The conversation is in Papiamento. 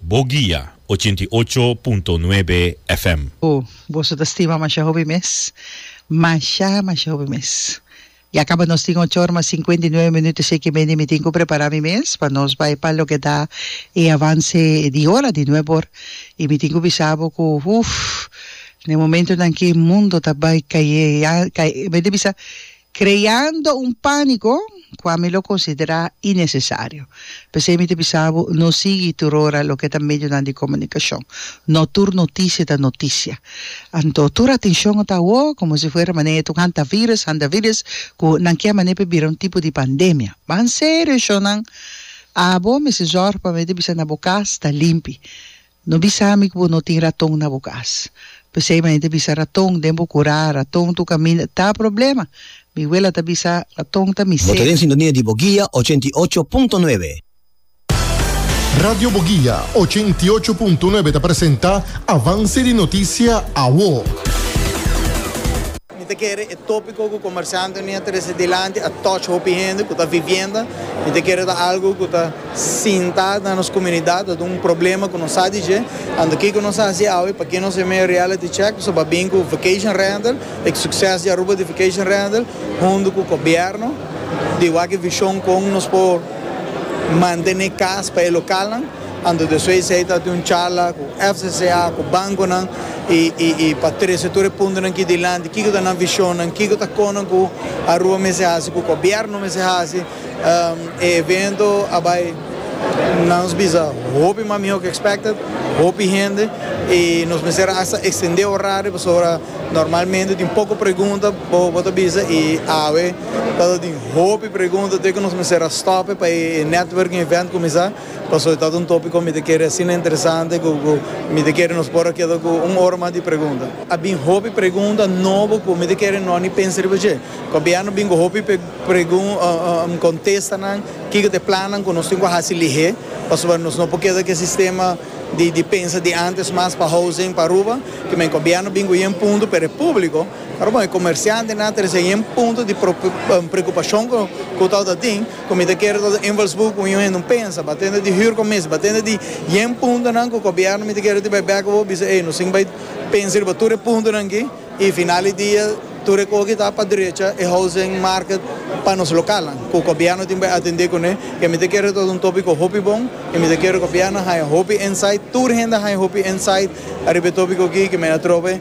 Bo guia, ochenta i ocho punto nuebe FM. Bo, boso ta stima masha hopi mes. Masha, masha hopi mes. Ya caba nos tin ocho ora mas cincuenta i nuebe minuto esey ki mende mi tin cu prepara mi mes pa nos bay pa loke ta e avance di ora di nuebe or y mi tin cu bisa bo cu uff na e momentonan ki mundo ta bay caye ya caye mende bisa creando un panico cua mi lo considera inecesario. P'esey mi ta bisa bo, no sigui turora loke ta medionan di comunicacion. No tur noticia ta noticia. Anto, tur atencion a ta awo, como si fuera manera e tok hantavirus, hantavirus, cu nan kia manera p'e bira un tipo di pandemia. Ban serio, eshonan. Abo mester zorg pa mi ta bisa na bo cas ta limpi. No bisa mi ku bo no tin raton na bo kas. P'esei mi a hende bisa raton den bo kurá, raton ta kaminda. Ta problema! Mi wela ta bisa, Raton ta mi ser. Bo ta den sintonia di Boguia ochenta i ocho punto nuebe. Radio Boguia ochenta i ocho punto nuebe ta presenta Avance di Noticia, Awo. Mi ta kere e tópiko ku komersiantenan mia trese dilanti a touch hopi hende ku ta vivienda. Mi ta kere ta algu ku ta sinta na nos komunidat, ta duna un problema ku nos sa di dje. Anto kiko nos a hasi awe? Pa ke nos a mei reality check? Nos a bai bin ku vacation rental, e sukses di Aruba di vacation rental, huntu ku gobièrnu di wak e vishon kon nos por mantene kas pa e lokalnan. Anto despues di esei ta tin un charla cu FCCA, cu banconan y y y pa trece tur e puntonan aki dilanti, kico ta nan visionnan, kico ta conan cu Aruba mester haci, cu gobierno mester haci. E evento a bay, nan nos bisa, hopi mas miho cu expected, hopi hende y nos mester a hasta extende horario pasobra normalmente tin poco pregunta bo bo ta bisa y awe tabata tin hopi pregunta, to'e cu nos mester a stope pa e networking event cuminsa. Paso e tabata un topico mi ta kere asina interesante cu mi ta kere nos por a keda cu un ora mas di pregunta. A bin hopi pregunta nobo cu mi ta kere no ni pensa riba dje. Gobierno bin cu hopi contesta nan kico ta e plannan cu nos tin cu haci lihe pasobra nos no por keda cu e sistema di pensa di antes mas pa housing pa Aruba. Ki men gobierno bin cu yen punto pero e publico pero bon e comerciantenan ta recibe yen punto di preocupacion cu tabata tin. Cu mi ta kere ta do invalsburgo un hende un pensa ba tende di huurcommissie ba tende di yen puntonan cu gobierno mi ta kere tin bay bek bo bisa ey nos tin bay pensa riba tur e puntonan ki y final di dia tur e cosa ki ta pa drecha e housing market pa nos localnan cu gobierno tin bay atende cune ke mi ta kere ta un topico hopi bon y mi ta kere gobierno haya hopi insight tur hende haya hopi insight riba e topico aki ke mi a trobe